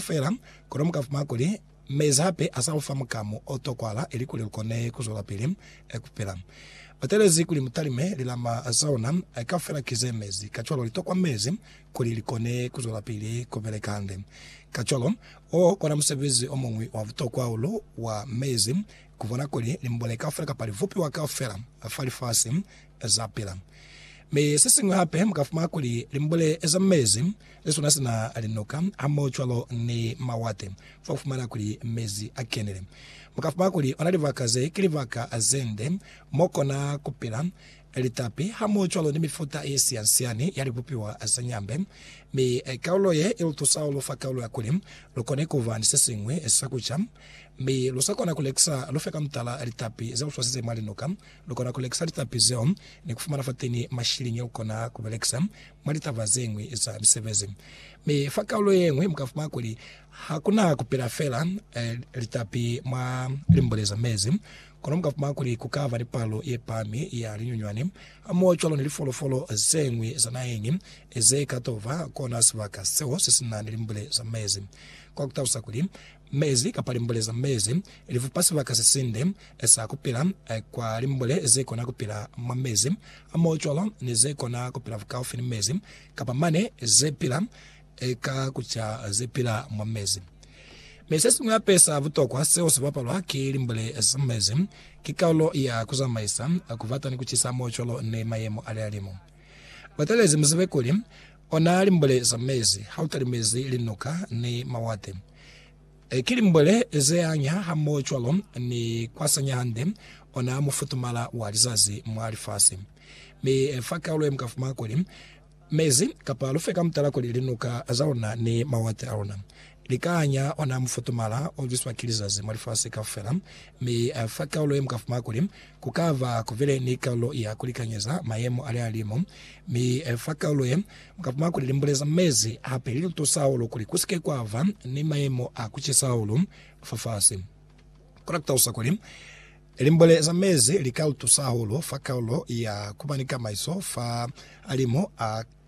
Fela, kono mu ka fumana kuli, Mezi hape a sa lu fa mukamu o tokwala ilikuli lu kone ku zwelapili ku pila. Ba talezi kuli mu talime lilama za luna kaufela ki ze mezi, kacwalo li tokwa mezi kuli li kone ku zwelapili ku beleka hande. Kacwalo, wo kona musebezi o muñwi wa butokwa hahulu wa mezi, ku bona kuli limbule kaufela kapa libupiwa kaufela fa lifasi za pila. Mi se siñwi hape, mu ka fumana kuli limbule za mezi ze swana sina linuka hamohocwalo ni mawate fa ku fumana kuli mezi a kenile. Mu ka fumana kuli ona libaka ze ki libaka ze nde mo kona ku pila litapi hamohocwalo ni mifuta ye sian-siani ya libupiwa za nyambe. Mi kaulo ye i lu tusa hahulu fa kaulo ya kuli lu kone ku ba ni se siñwi sa ku ca. Mi lu sa kona ku lekisa lu fe ka mutala litapi ze lu swasize mwa linuka Lukona kulekisa litapi zeo ni kufumana fateni mashiliñi alukona kubelekisa mwa litaba zeñwi za misebezi. Mi fa kaulo yeñwi mukafumana kuli hakuna kupila feela litapi mwa limbule za mezi, kono mukafumana kuli kukaba ni palo yepahami ya linyunywani hamoho cwalo ni lifolofolo zeñwi za naheñi zeka toba kona sibaka seo sesina ni limbule za mezi. Kwa kutalusa kuli Mezi kapa limbule za mezi lifupa sibaka sesinde sa kupila kwa limbule zekona kupila mwa mezi amoocwalo ni zekona kupila bukaufi ni mezi, kapa mane zepila ka kuca zepila mwa mezi. Mi sesiñwi hape sa butokwa seo sibapalwa ki limbule za mezi ki kaulo ya kuzamaisa, kubata ni kucisa amoocwalo ni mayemo alihalimu. Batelezi muzibe kuli, Ona limbwele za mezi ha u talimezi linuka ni mawate. E, ki limbwele zeanya hamohocwalo ni kwasanya hande ona mufutumala wa lizazi mwa lifasi. Mi fa kaulo ye mukafumana kuli, mezi, kapa lufe ka mutala kuli linuka za luna ni mawate a luna, likaanya ona mufutumala olwiswa ki lizazi mwa lifasi kaufela, mi fa kaulo ye mukafumana kuli, Ku ka ba ku bile ni kaulo ya ku likanyeza mayemo a lihalimu, mi fa kaulo ye, mu ka puma kuli limbule za mezi hape li lu tusa hahulu kuli ku si ke kwa ba ni mayemo a ku cisa hahulu fafasi. Kona ku talusa kuli, limbule za mezi li ka lu tusa hahulu fa kaulo ya ku ba ni kamaiso fa halimu a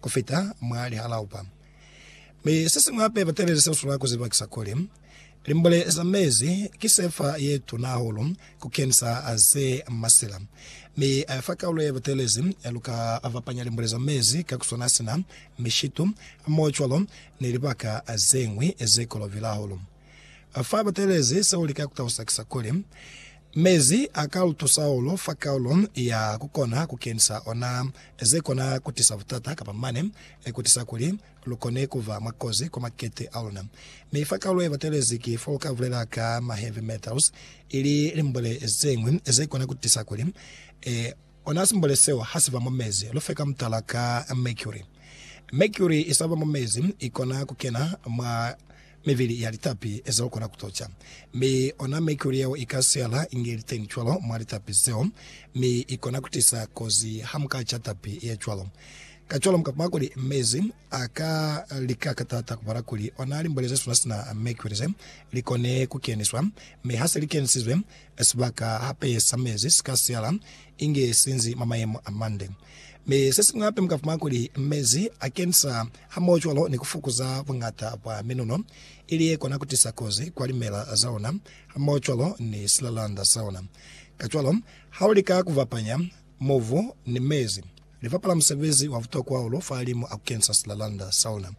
ku fita mwa lihalaupa. Mi se siñwi hape ba tabelisa ku sula ku zibakisa kuli, limbule za mezi ki sefa ye tuna hahulu ku kenisa ze masila. Mi fa kaulo ye batelezi, lu ka fapanya limbule za mezi ka ku swana sina mishitu, hamohocwalo ni libaka ze ñwi ze kolovile hahulu. Fa batelezi, seo lika ku talusakisa kuli, mezi a ka luto sahulu fa kaulo ya ku kona ku kenisa ona ze kona ku tisa butata kapa mane ku tisa kuli lu kone ku ba mwa kozi kwa makete a luna. Mi fa kaulo ye batelezi ki fo lu ka bulela ka ma heavy metals, ili limbole zeñwi ze kona ku tisa kuli ona simbole seo ha si ba mwa mezi. Lu fe ka mutala ka mercury. Mercury i sa ba mwa mezi, i kona ku kena mwa. Mibili ya litapi zeo kona ku toca, mi ona mercury yeo i ka siyala inge ili teni cwalo mwa litapi zeo, mi i kona ku tisa kozi ha mu ka ca tapi ye cwalo. Kacwalo mu ka kuma kuli mezi a ka lika ka taata ku bala kuli ona limbwele ze suna sina mercury ze li kone ku keniswa, mi ha se li kenisizwe, sibaka hape sa mezi si ka siyala inge si nzi mwa mayemo a mande. Mi sesiñwi hape muka fumana kuli mezi a kensa hamoho cwalo ni kufukuza buñata bwa minuno ili yekona kutisa kozi kwa limela zaona hamoho cwalo ni silalanda saona. Kacwalo, ha ulika kufapanya mobu ni mezi, lifapala musebezi wa butokwa hahulu fahalimu a kukensa silalanda saona.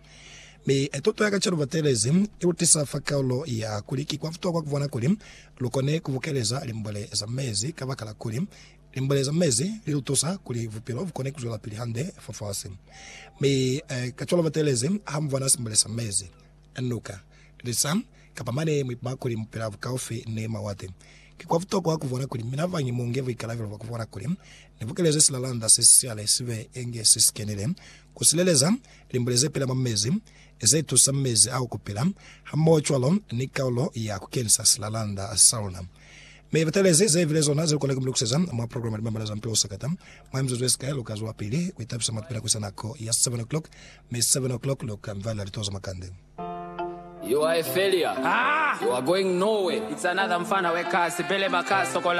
Mi tuto ya kacwalo batelezi ilutisa fa kaulo ya kuli ki kwa butokwa kubona kuli lukone kubukeleza limbwele za mezi kabakala kuli Limbwele za mezi li lu tusa kuli bupilo bu kone ku zwelapili hande fafasi. Mi kacwalo batelezi ha mu bona simbwele sa mezi, nuka, lisa, kapa mane mu ipama kuli mu pila bukaufi ni mawate. Ki kwa butokwa ku bona kuli mina bañi mu nge buikalabelo bwa ku bona kuli ni bukelezi silalanda se si sicale si be inge se si kenile ku sileleza limbwele ze pila mwa mezi, ze tusa mezi ao ku pila, hamohocwalo ni kaulo ya ku kenisa silalanda sa luna Mi batelezi zebile zona zelukona kumulikuseza mwa program ya Limamala za Mpilo Sakata. Mwa mizuzu yesikai luka zwa pili kuitabisa mwa pila kuisa nako ya 7 o'clock, mi 7 o'clock luka mvalela lituwa za makande. You are a failure. You are going nowhere. It's another mfana we kasi, belema ka sokola.